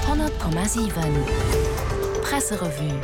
100,7 Presserevue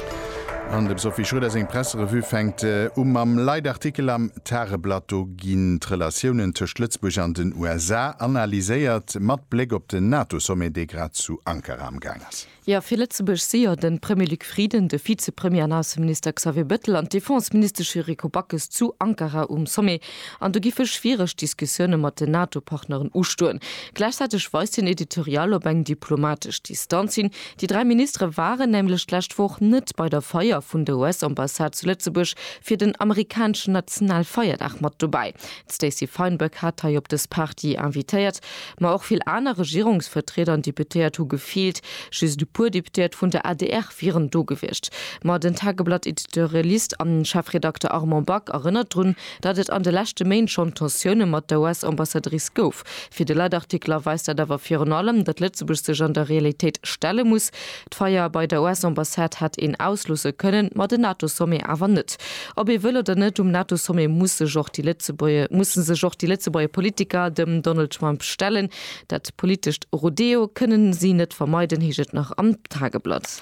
An dem Sophie Schröder seng Presserevue fänkt u mam Leitartikel am Tageblatt. Do ginn d'Relatiounen tëscht Lëtzebuerg an den USA analyséiert, mat Bléck op den NATO-Sommet, dee grad zu Ankara amgaang ass. Jo, fir Lëtzebuerg si jo de Premier Luc Frieden, de Vizepremier an Ausseminister Xavier Bettel an d'Defenseministesch Yuriko Backes zu Ankara um Sommet. An do giffe schwiereg Diskussioune mat den NATO-Partneren ustoen. Gläichzäiteg weist den Editorial op eng diplomatesch Distanz hin. Déi dräi Ministere waren nämlech d'lescht Woch net bei der Feier vun der US-Ambassade zu Lëtzebuerg fir den amerikaneschen Nationalfeierdag mat dobäi. D'Stacey Feinberg hat hei op dës Party invitéiert, ma och vill aner Regierungsvertrieder an Deputéiert hu gefeelt. Just e puer Deputéiert vun der adr wieren do gewiescht. Ma den Tageblatt-Editorialist an Chefredakter Armand Back erënnert drun, datt et an de leschte Méint schonn Tensioune mat der US-Ambassadrice gouf. Fir de Leitartikler weist dat awer virun allem, datt Lëtzebuerg sech an der Realitéit stelle muss. D'Feier bei der US-Ambassade hätt een ausloosse kënnen, ma den NATO-Sommet awer net. Ob ee wëll oder net, um NATO-Sommet muss sech och déi Lëtzebuerg, musse sech och déi Lëtzebuerger Politiker dem Donald Trump stellen. Dat politescht Rodeo kënne si net vermeiden, heescht et nach am Tageblatt.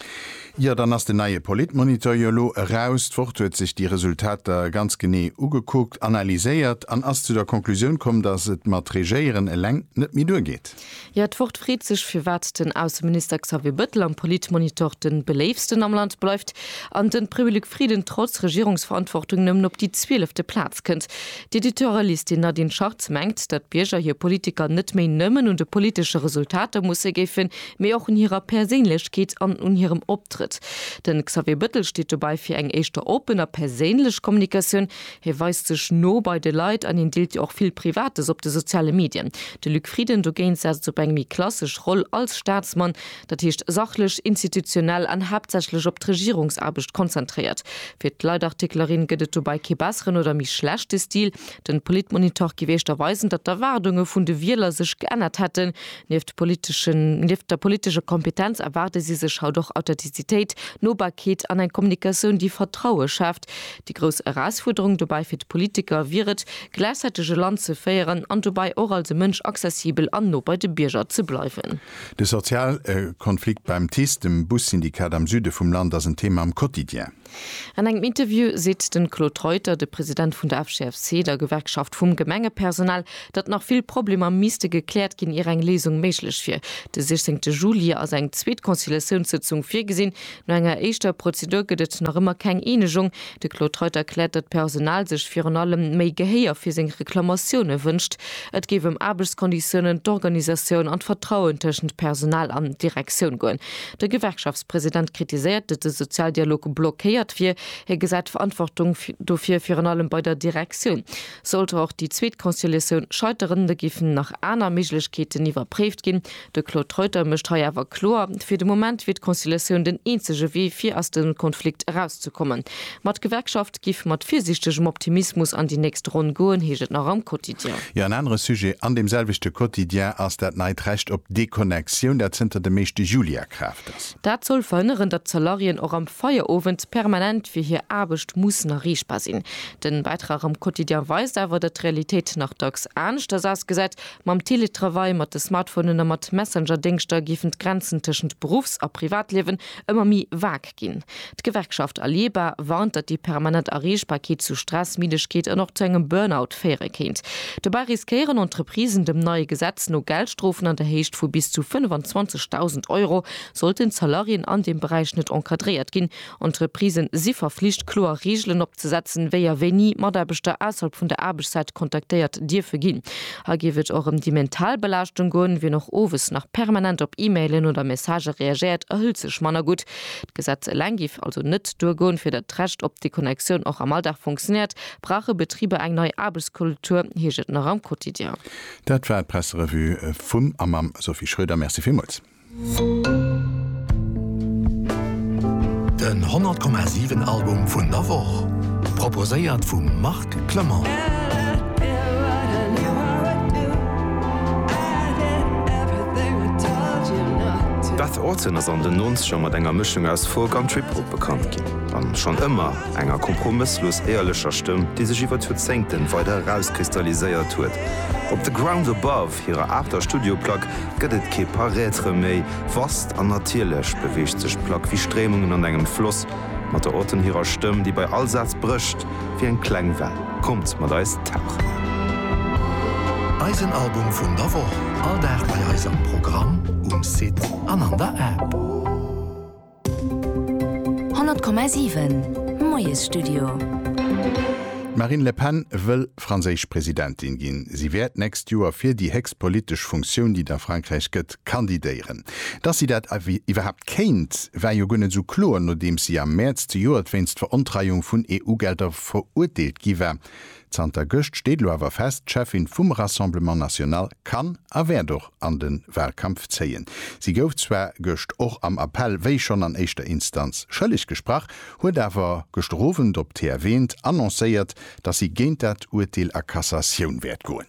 Jo, dann ass den neie Politmonitor jo elo eraus. D'Wort huet sech déi Resultater ganz genee ugekuckt, analyséiert an ass zu der Konklusioun komm, datt et mat Regéieren eleng net méi duergeet. Jo, d'Wort freet sech, firwat den Ausseminister Xavier Bëttel am Politmonitor de beléiftsten am Land bleift an de Prévy Luc Frieden trotz Regierungsverantwortung nëmmen op déi zwielefte Plaz kënnt. D'Editorialistin Nadine Schartz mengt, datt d'Bierger hir Politiker net méi nëmmen un de politesche Resultater musse géifen, mee och un hirer Perséinlechkeet an un hirem Optrëtt. Den Xavier Bëttel steet dobäi fir eng éischter open a perséinlech Kommunikatioun, Hie weist sech no bei de Leit an hien deelt jo och vill Privates op de soziale Medien. De Luc Frieden dogéint setzt op eng méi klassesch Roll als Staatsmann, dat heescht sachlech, institutionell an haaptsächlech op d'Regierungsaarbecht konzentréiert. Fir d'Leitartiklerin gëtt et dobäi kee besseren oder méi schlechte Stil. Den Politmonitor géif éischter weisen, datt d'Erwaardunge vun de Wieler sech geännert hätten. Nieft politeschen, nieft der politescher Kompetenz erwaarde si sech haut och Authentizitéit, Nobarkeet an eng Kommunikatioun, déi Vertraue schaaft. Déi grouss Erausfuerderung dobäi fir d'Politiker wier et, gläichzäiteg e Land ze féieren an dobäi och als e Mënsch accessibel an no bei de Bierger ze bleiwen. De Sozialkonflikt beim TICE, dem Bussyndikat am Süde vum Land, ass en Thema am Quotidien. An engem Interview seet de Claude Reuter, de President vun der FGFC, der Gewerkschaft vum Gemengepersonal, datt nach vill Problemer misste gekläert ginn, ier eng Léisung méiglech wier. De 16 Juli ass eng zweet Conciliatiounssëtzung virgesinn, No enger éischter Prozedur gëtt et nach ëmmer keng Eenegung. De Claude Treudt erkläert, datt d'Personal sech virun allem méi Gehéier fir seng Reklamatioune wënscht. Et géif ëm Aarbechtskonditiounen, d'Organisatioun an d'Vertrauen tëschent Personal an Direktioun goen. De Gewerkschaftspresident kritiséiert, datt de Sozialdialog blockéiert wier. Hie gesäit d'Verantwortung dofir virun allem bei der Direktioun. Sollt och déi zweet Conciliatioun scheiteren, da géifen nach aner Méiglechkeeten iwwerpréift ginn, De Claude Reuter mécht hei awer kloer, fir de Moment wier d'Conciliatioun den eenzege Wee fir aus dem Konflikt erauszekommen. Ma d'Gewerkschaft giff mat virsiichtegem Optimismus an déi nächst Ronn goen, heescht et nach am Quotidien. Jo, en anere Sujet an deem selwechte Quotidien ass dat neit Recht op Deconnexioun, dat zënter dem éischte Juli a Kraaft ass. Dat soll verhënneren, datt d'Salariéen och am Feierowend permanent fir hir Aarbecht mussen erreechbar sinn. Den Bäitrag am Quotidien weist awer, datt d'Realitéit nach dacks aneschters ausgesäit, Mam Teletravail, mat de Smartphonen a mat Messenger-Déngschter géifen d'Grenzen tëschent Beruffs a Privatliewen ëmmer méi vag ginn. D'Gewerkschaft Allieba warnt, datt déi permanent Erreechbarkeet zu Stress, Middegkeet an och zu engem Burnout féiere kéint. Dobäi riskéieren Entreprisen dem neie Gesetz no Geldstrofen an der Héicht vu bis zu 25.000 Euro, sollten d'Salariéen an deem Beräich net encadréiert ginn, Entreprisen si verflicht, kloer Reegelen opzesetzen, wéi a wéini Mataarbechter ausserhalb vun der Aarbechtszäit kontaktéiert dierfe ginn. Hei géif et och ëm déi mental Belaaschtung goen. Wien och owes nach permanent op E-Mailen oder Messagë reagéiert, erhëlt sech manner gutt. D'Gesetz eleng géif also net duergoen. Fir datt d'Recht op Deconnectioun och am Alldag funktionéiert, brauche Betriber eng nei Aarbechtskultur, heescht et nach am Quotidien. Dat war d'Presserevue vum a mam Sophie Schröder. Merci villmools. Den 100 Komma 7 Album vun der Woch, proposéiert vum Marc Clement. D'Beth Orton ass an den Nonzeger mat enger Mëschung aus Folk an Trip-Hop bekannt ginn, a schonn ëmmer enger kompromësslos éierlecher Stëmm, déi sech iwwer d'Joerzéngten weider erauskristalliséiert huet op The Ground Above. Hirer aachter Studioplack gëtt et kee Paraitre méi. Vast an natierlech beweegt sech d'Plack wéi Stréimungen an engem Floss, mat der Autonne hirer Stëmm, déi bei all Saz brécht wéi eng kleng Well. Kommt mat eis tauchen! Eisen Album vun der Woch, all Dag bei eis am Programm, um Site an an der App. 100,7 Moiesstudio. D'Marine Le Pen wëll franséisch Presidentin ginn. Si wäert d'nächst Joer fir déi héchst politesch Funktioun, déi et a Frankräich gëtt, kandidéieren. Datt si dat iwwerhaapt kéint, war jo guer net esou kloer, nodeems si am Mäerz zejoert wéinst Verontreiung vun EU-Gelder verurteelt gi war. Zanter gëscht steet elo awer fest, D'Cheffin vum Rassemblement National kann a wäert och an de Wahlkampf zéien. Si gouf zwar gëscht och am Appell, wéi schonn an éischter Instanz, schëlleg gesprach, huet awer gëschter Owend op TF1 annoncéiert, datt si géint dat Urteel a Cassatioun wäert goen.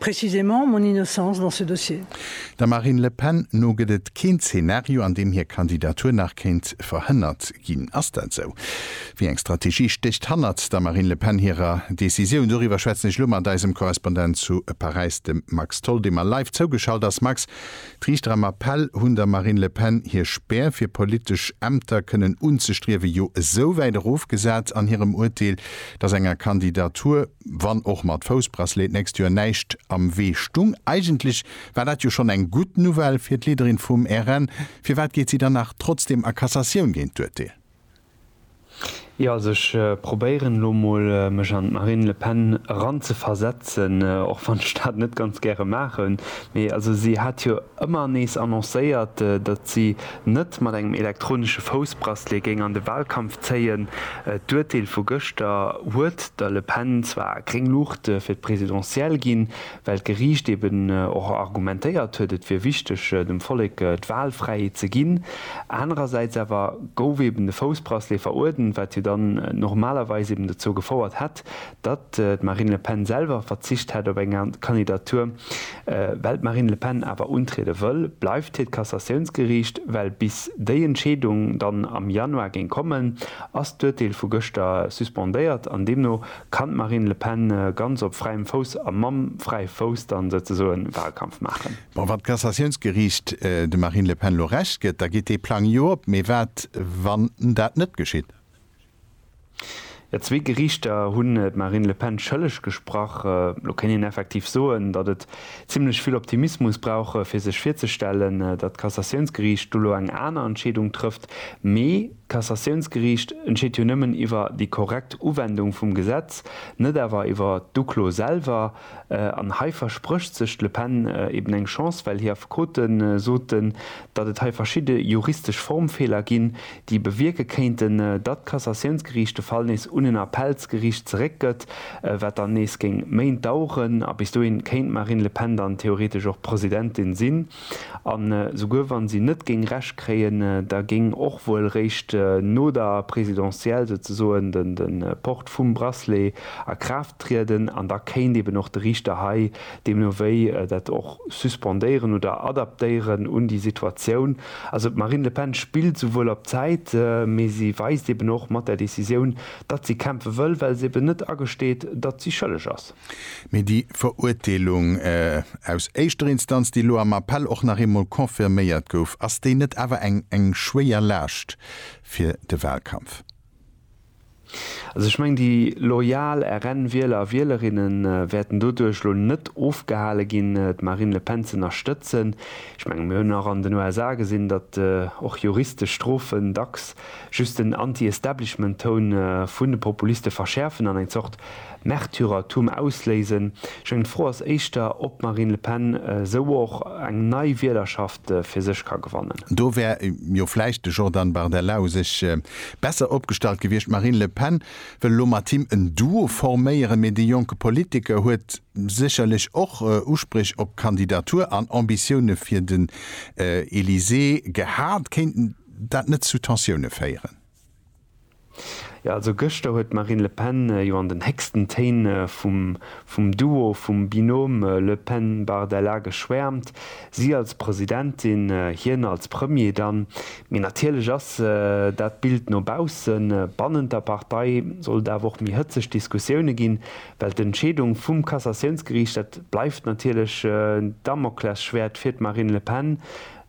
Précisément mon innocence dans ce dossier. Der Marine Le Pen no gëtt et keen Zeenario, an deem hir Kandidatur nach kéint verhënnert ginn. Ass dat esou? Wéi eng Strategie stécht hannert der Marine Le Pen hirer Decisioun? Doriwwer schwätzen ech elo mat eisem Korrespondent zu Paräis, dem Max Tholl, dee mer live zougeschalt ass. Max, d'Riichter am Appell hunn der Marine Le Pen hir Spär, fir politesch Ämter kënnen unzestriewen, jo esouwäit erofgesat an hirem Urteel, datt enger Kandidatur, Wann och mat Foussbracelet d'nächst Joer näischt am Wee stung. Eigentlech war dat jo schonn eng gutt Nouvelle fir d'Leaderin vum RN. Firwat geet si dann nach trotzdeem a Cassatioun géint d'Urteel? Jo, also ech probéieren elo mol mech an d'Marine Le Pen eranzeversetzen, och wann ech dat net ganz gäre maachen. Mee also si hat jo ëmmer nees annoncéiert, datt si net mat engem elektronesche Foussbracelet géing an de Walkampf zéien. D'Urteel vu gëschter huet der Le Pen zwar gréng Luucht fir d'Presidentielle ginn, well d'Geriicht eben och argumentéiert huet, et wier wichteg, dem Vollek d'Walfräiheet ze ginn. Anerersäits awer gouf eben de Foussbracelet veruerdent, wat jo dann normalerweis eben dozou gefouert hätt, datt d'Marine Le Pen selwer verzicht hätt op eng Kandidatur. Well d'Marine Le Pen awer untriede wëll, bleift hiert Kassatiounsgeriicht. Well bis déi Entscheedung dann am Januar géing kommen, ass d'Urteel vu gëschter suspendéiert an deemno kann d'Marine Le Pen ganz op fräiem Fouss a mam fräie Fouss dann souzesoe Wahlkampf maachen. Bon, wann d'Kassatiounsgeriicht dem Marine Le Pen elo Recht gëtt, da geet dee Plang jo op. Mee wat wann dat net geschitt? Jo, zwee Geriichter hunn d'Marine Le Pen schëlleg gesprach. Elo kéint een effektiv soen, datt et zimlech vill Optimismus brauch, fir sech virzestellen, datt d'Cassatiounsgeriicht do elo eng aner Entscheedung trëfft. Mee d'Cassatiounsgeriicht entscheet jo nëmmen iwwer déi korrekt Uwendung vum Gesetz, net awer iwwer d'Uklo selwer. An hei versprécht sech d'Le Pen eben eng Chance, well hir Affekote soten, datt et hei verschidde juristesch Formfeeler ginn, déi bewierke kéinten, datt d'Cassatiounsgeriicht de Fall nees un en Appellsgeriicht zeréckgëtt, wat dann nees géing Méint daueren. A bis dohin kéint d'Marine Le Pen dann theoretesch och Presidentin sinn. An esouguer wann si net géing Recht kréien, da géing och wuel réischt no der Présidentielle souzesoen de Port vum Bracelet a Kraaft trieden an da kéint eben och de Riichter hei deemno wéi dat och suspendéieren oder adaptéieren un déi Situatioun. Also d'Marine Le Pen spillt esouwuel op Zäit, mee si weist eben och mat där Décisioun, datt si kämpfe wëll, well se eben net agesteet, datt si schëlleg ass. Mee déi Verurteelung aus éischter Instanz, déi elo am Appell och nach eemol confirméiert gouf, ass déi net awer eng schwéier Laascht fir de Wahlkampf? Also ech mengen, déi loyal RN-Wieler a Wielerinne wäerten doduerch elo net ofgehale ginn, d'Marine Le Pen z'ënnerstëtzen. Ech mengen, mir hunn och an den USA gesinn, datt och juristesch Strofen dacks just den Anti-Establishment-Toun vun de Populiste verschäerfen an eng Zort Märtyrertum ausléisen. Meng Fro ass éischter, ob d'Marine Le Pen esou och eng nei Wielerschaft fir sech ka gewannen. Do wär jo vläicht de Jordan Bardella u sech besser opgestallt gewiescht. D'Marine Le Pen wëll elo mat him en Duo forméieren, mee de jonke Politiker huet sécherlech och Uspréch op d'Kandidatur an Ambitioune fir den Elysée gehat. Kéint dat net zu Tensioune féieren? Jo, also gëschter huet d'Marine Le Pen jo an den héchsten Téin vum Duo, vum Binôme Le Pen-Bardella geschwäermt, si als Presidentin, hien als Premier dann. Mee natierlech ass dat d'Bild no baussen. Bannent der Partei soll et awer och méi hëtzeg Diskussioune ginn, well d'Entscheedung vum Cassatiounsgeriicht, dat bleift natierlech en Damoklesschwäert fir d'Marine Le Pen.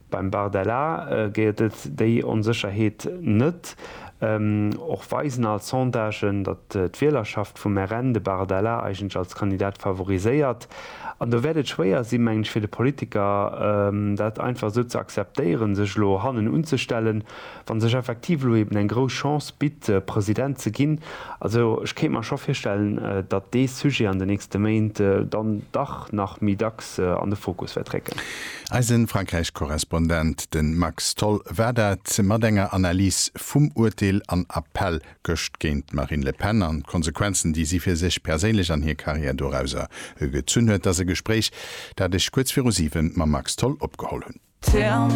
Beim Bardella gëtt et déi Onsécherheet net. Och weisen all Sondagen, datt d'Wielerschaft vum RN de Bardella eigentlech als Kandidat favoriséiert. An do wäert et schwéier si, mengen ech, fir de Politiker dat einfach esou ze akzeptéieren, sech elo hannen unzestellen. Wann sech effektiv elo eben eng grouss Chance bitt, President ze ginn, also ech kéint mer scho virstellen, datt dee Sujet an den nächste Méint dann dach nach méi dacks an de Fokus wäert récken. Eise Frankräich-Korrespondent, de Max Tholl, war dat mat enger Analys vum Urteel an Appell gëscht géint d'Marine Le Pen an d'Konsequenzen, déi si fir sech perséinlech an hir Karriär dorauser gezunn huet. Dass e Gespréich, dat ech kuerz viru siwe mam Max Tholl opgeholl hunn.